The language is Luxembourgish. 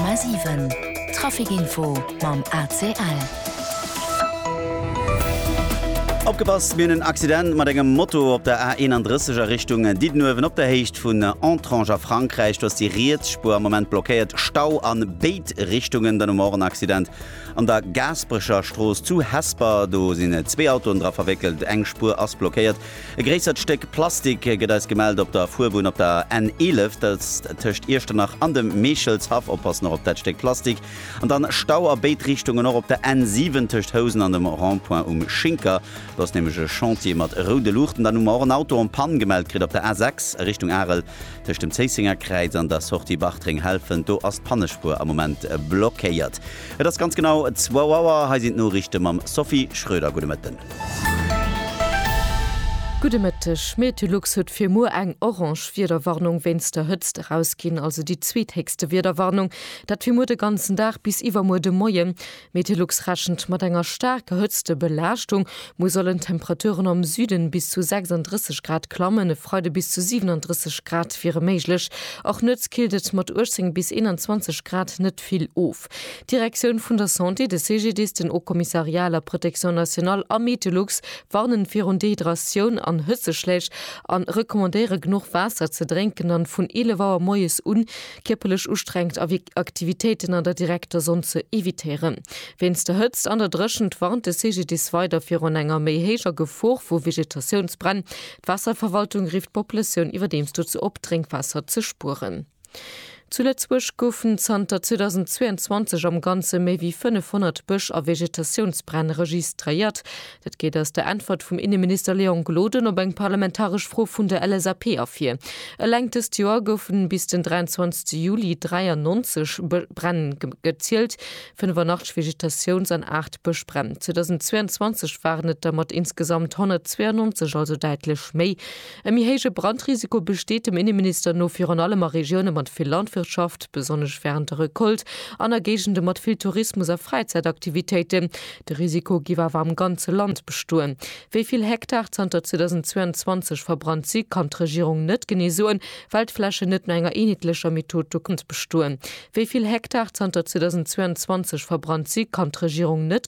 100,7 Trafic Info mam ACL. Opgepasst, mir hunn en Accident mat engem Moto op der A31 a Richtung Diddenuewen op der Héicht vun Entrange a Frankräich. Do ass déi riets Spuer am Moment blockéiert. Stau an béid Richtungen. Dann hu mer och en Accident an der Gaasperecher Strooss zu Hesper. Do sinn zwee Autoen dra verwéckelt. Eng Spuer ass blockéiert. E gréissert Stéck Plastik gëtt eis gemellt op der Fuerbunn op der N 11, dat ass tëscht Iechternach an dem Meechelshaff. Oppassen och op dat Stéck Plastik. An dann Stau a béid Richtungen, och op der N 7 tëscht Housen an dem Rond-point um Schinker. Do ass nämlech e Chantier mat roude Luuchten. Dann hu mer och en Auto en panne gemellt kritt op der A 6 a Richtung Arel tëscht dem Zéissenger Kräiz an der Sortie Bartreng-Helfent. Do ass d'Pannespuer am Moment blockéiert. Et ass ganz genau zwou Auer. Hei sinn d'Noriichte mam Sophie Schröder. Gudde Mëtten. Gudde Mëtteg. Meteolux huet fir muer eng orange Wiederwarnung wéinst der Hëtzt erausginn, also déi zweethéchste Wiederwarnung. Dat fir muer de ganzen Dag bis iwwermuer de Moien. Meteolux rechent mat enger staarker Hëtztebelaaschtung. Muer sollen d'Temperaturen am Süden bis zu 36 Grad klammen, e Freide bis zu 37 Grad wiere méiglech. Och nuets killt et mat 18 bis 21 Grad net. vill of. D'Direktioun vun der Santé, de CGDIS, den Haut Commissariat à la Protection nationale a Metelux warnen virun Dehydratioun an Hëtzeschläich a recommandéiere genuch Waasser ze drénken an vun 11 Auer moies un kierperlech ustrengend Aktivitéiten an der direkter Sonn ze evitéieren. Wéinst der Hëtzt an der Dréchent warnt de CGDIS weider virun enger méi héijer Gefor vu Vegetatiounsbränn. D'Waasserverwaltung rifft d'Populatioun iwwerdeems dozou op, Drénkwaasser ze spueren. Zu Lëtzebuerg goufen zanter 2022 am Ganze méi wéi 500 Bësch a Vegetatiounsbränn registréiert. Dat geet aus der Äntwert vum Inneminister Léon Gloden op eng parlamentaresch Fro vun der LSAP ervir. Eleng dëst Joer goufen bis den 23 Juli 93 Bränn gezielt, 85 Vegetatiouns an 8 Bëschbränn. 2022 waren et der mat insgesamt 192, also däitlech méi. E méi héije Brandrisiko besteet dem Inneminister no virun allem a Regioune mat vill Landwirtschaft, besonnesch wärend der Recolte, an a Géigende mat vill Tourismus a Fräizäitaktivitéiten. De Risiko géif awer am ganze Land bestoen. Wéi vill Hektar zanter 2022 verbrannt si kann d'Regierung net genee soen, well d'Flächen net no enger eenheetlecher Method do bestoen. Wéi vill Hektar zanter 2022 verbrannt si kann d'Regierung net.